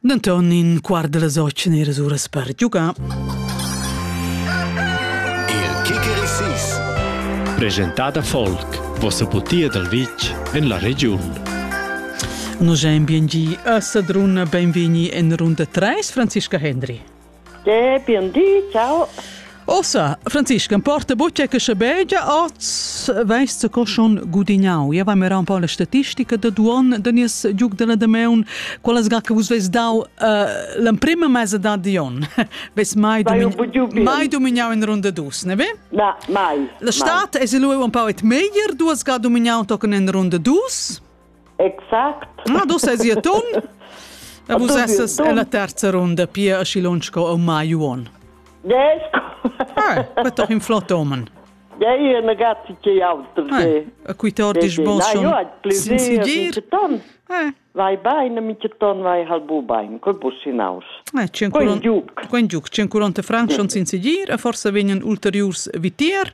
Denton in quart dalla socen era uras per giugar. Il kicker sis. Presentada Folk, vossa butia dal vitg en la regiun. Nus ein bien gi a Sadrun, benvegni en runda 3, Franziska Hendry. Dapi un di, ciao. Ossa, Franziska, importa bucce che schabegia oz veist co schon gudignau. Ja vam era un po la statistica da duon da nies giug della Dameun, quella sga che vus veis dau uh, l'emprima mesa da Dion. Veis mai domignau mai domignau in runda dus, ne ve? Na, mai. La stat mai. es lu un po et meglier duas ga domignau tochen in runda dus? Exact. Ma dus è sia ton? E vus essas en la terza runda, pia aschi lunsch sco au mai uon. Yes. Ah, bet doch in flott omen. Ja, io è negati che auto. A cui te ordis bon schon sin sidir? Eh. Vai bain, mi ton vai hal bu bain, col bus hinaus. Eh, quen giuc. Quen giuc, 140 franc schon sin sidir, e forse vegnan ulteriurs vitier.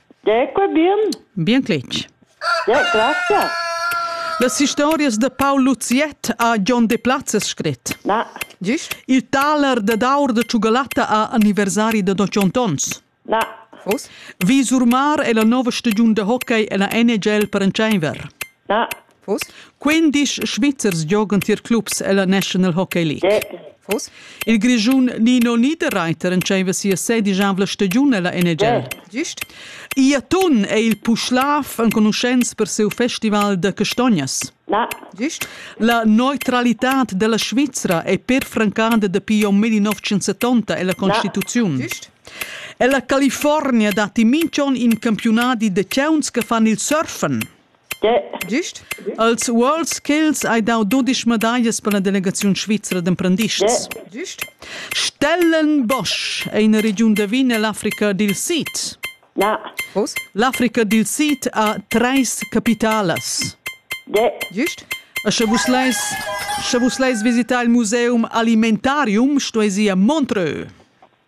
Ecco bien. Bien cletg. Ja, grazie. Las historias de Paul Luziet ha John Deplazes scrit. Na. Gist? Il taler de d'aur de Ciugalatta a anniversari de 200 ons. Na. Fus? Visur Mar è la nova stagiun de hockey en la NHL per en Tscheinwer. Na. Quindisch Svizzers giogan tier clubs ella National Hockey League. Il Grischun Nino Niederreiter entscheiva sia sedischavla stagiun ella NHL. Gist? Ia ton è il Puschlav enconuschents per seu festival da castognas. Na. Gist? La neutralitad della Svizra è perfrancada dapi om 1970 ella Constituziun. Gist? Ella California datti minchon in campionati de ciauns che fan il surfen. Gist als uals ch'els hai dau dudisch medaglias per la delegaziun svizra d'emprendists. Gist Stellenbosch è ina regiun da vin ell'Africa dil Sid. L'Africa dil Sid ha treis capitalas. Gist. E sche vus leis, sche vus leis visitar il museum alimentarium, stueis ir a Montreux.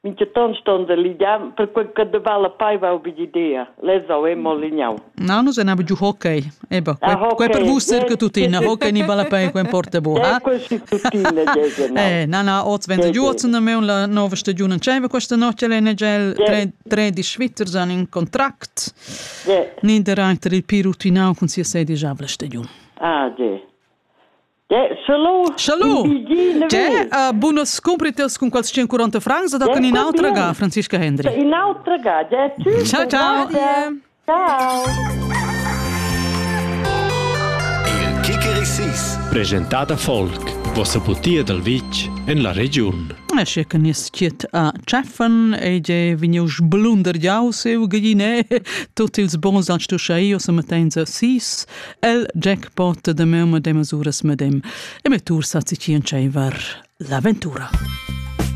Minchaton ston se ligiar, perque che de vala paiva ubi d'idea. Les au e mollignau. No, nus en abu giu hockey. Eba, ah, quei per vus cerca tutina, hockey ni balla pei, quei porta bu, ha? Quei si tutina, Eh, na, na, oz venza giu, oz ne meun la nova stagiun in ceva, questa notte l'NGL tre di Schweizers an in contract. Niederreiter il pirutinau cun sia sedi già la stagiun. Ah, ge. Shalom! Tge uh, bunas scumpritas cun quels 140 francs da con in'altra ga, Franziska Hendry? In'altra ga, Ciao, ciao! Ciao! Il Kikerisis, presentata folk, vossa butia dal vitg en la regiun. Esce che nies chiet a Tscheffen e je vegniu sblunder jau seu gine tut ils bons ans tu schai o se metenza sis El jackpot da meu madem masuras medem e me tur sa tschien tscheiver l'aventura.